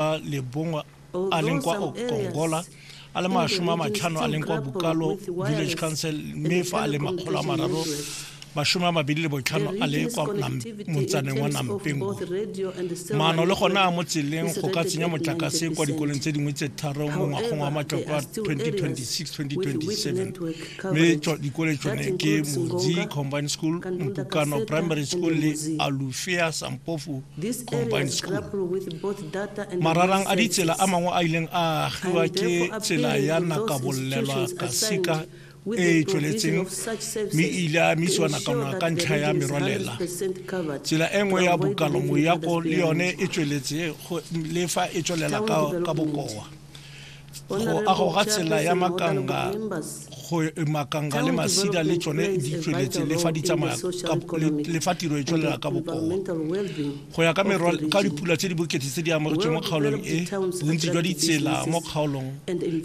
a lebongwe a leng kwa okongola a le masome a matlhano a leng kwa bukalo village council mme fa a le makgolo a mararo mashome a mabedi le botlhano a le kwa motsaneng wa nampeng maano le gone a mo tseleng go ka tsenya motlakase kwa dikolong tse dingwe tse tharo mo ngwagong wa matloko a 2026-2027 mme dikole tsone ke modzi combined school mpukano primary school le alufea sampofu mararang a ditsela a mangwe a ileng a agiwa ke tsela ya nakabolelwa kasika e e tsweletseng mme e ile a misiwa nakwana ka ntlha ya merwalela tsela e nngwe ya bokalo moyako le yone e tsweletse le fa e tswelela ka bokoa go agoga tsela ya makanga go makanga le masida le tsone di tsweletse le fa di tsamaya le fa tiro e tswelela ka bokoa go ya ka merwa ka dipula tse di bokete tse di amogetswe mo kgaolong e bontsi jwa ditsela mo kgaolong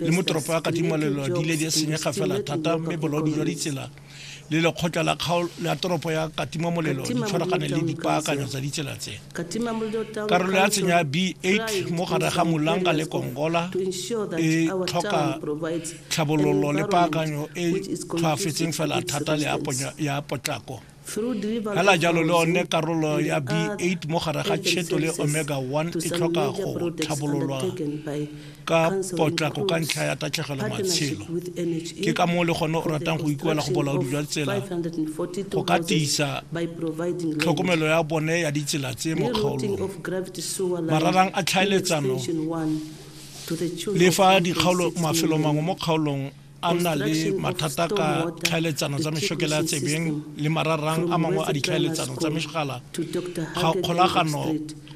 le mo toropo ya katimalelo di ile di senyega fela thata mme bolaodi jwa ditsela le lekgotla la kgaolo la toropo ya katimamolelo di tshwaragane le dipaakanyo tsa ditsela tse karolo ya tshenya b8 mo gare ga molanga le kongola e tlhoka tlhabololo le paakanyo e tlhwaafetseng fela thata le ya potlako fela jalo le one karolo ya b8 mo gare ga cheto le omega 1 e tlhoka go tlhabololwa ka potlako ka ntlha ya tatlhegelo matshelo. Ke ka moo le gone o ratang go ikuela go bolaodi jwa tsela go ka tiisa tlhokomelo ya bone ya ditsela tse mo kgaolong. Mararang a tlhaeletsano le fa dikgaolo mafelo mangwe mo kgaolong a nna le mathata ka tlhaeletsano tsa mešokela ya tsebeng le mararang a mangwe a ditlhaeletsano tsa megala ga kgolagano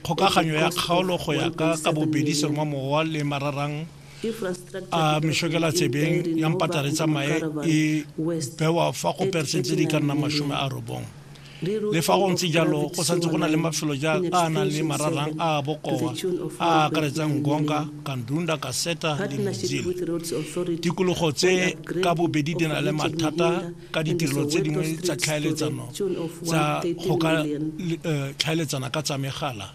kgokaganyo ya kgaolo go ya ka ka bobedi seromamowa le mararang a mešokela tsebeng ya mpatare tsa mae e bewa fa go persente di ka nna masome a robong Le fa go ntse jalo, go santse go na le mafelo jaaka a a nang le mararang a a bokoa a a akaretsang Ngonga, Kandunda, Kaseta le Mzil. Tikologo tse ka bobedi di na le mathata ka ditirelo tse dingwe tsa tlhaeletsano tsa go ka eh, tlhaeletsana ka tsa megala.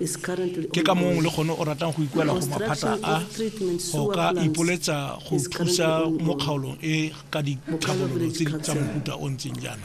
Ke ka mong le gone o ratang go ikuela go maphata a go ka ipoletsa go thusa mo kgaolong e ka ditlhabololo tse di tsa mofuta o ntseng jaana.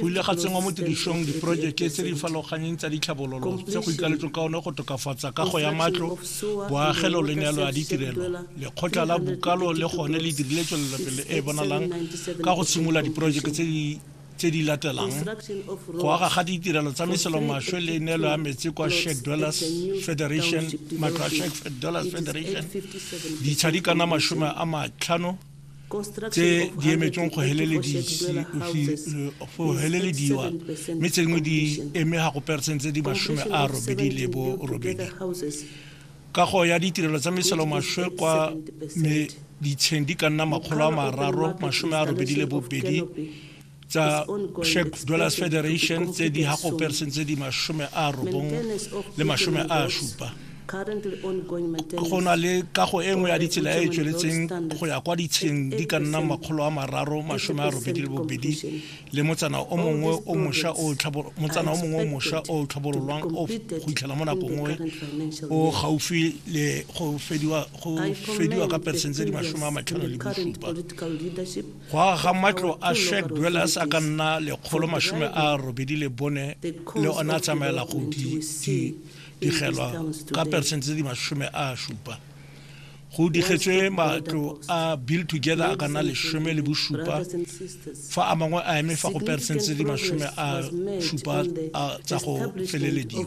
Go ile ga tsenngwa mo tirisong diporojeke tse di farologaneng tsa ditlhabololo tse go ikaletsweng ka one go tokafatsa kago ya matlo boagelo le neelo ya ditirelo lekgotla la bokalo le gone le dirile tswelelopele e e bonalang ka go simolola diporojeke tse di tse di latelang go aga ga ditirelo tsa meselomaswe le neelo ya metsi kwa Shack Dwellers Federation matlo a Shack Dwellers Federation ditshadi kana mashome a matlhano tse di emetsweng go helelediwa uh, mme tse dingwe di eme ga go peresente di masome a robedi le bo robedi kago ya ditirelo tsa meselo maswe kwa ditsheng di ka nna makgolo a mararo masome a robedi le bobedi tsa Czech Dwellers Federation tse di hakoperseng tse di mashome a robong le mashome a supa go na le kago e nngwe ya ditsela e e tsweletseng go ya kwa ditsheng di ka nna makgolo a mararo mashome a robedi le bobedi le motsana o mongwe o mosha o motsana o mongwe o mosha o tlhabololwang o go itlhela mo nakong nngwe o gaufi le go fediwa go fediwa ka persentse di mashome a matlhano le bosupa go aga ga matlo a shack dwellers a ka nna lekgolo masome a robedi le bone le one a tsamaela go digelwa ka peresente tse di masome a supa go digetswe matlo a build together a ka nna lesome le bosupa fa a mangwe a eme fa go peresente tse di masome a supa tsa go felelediwa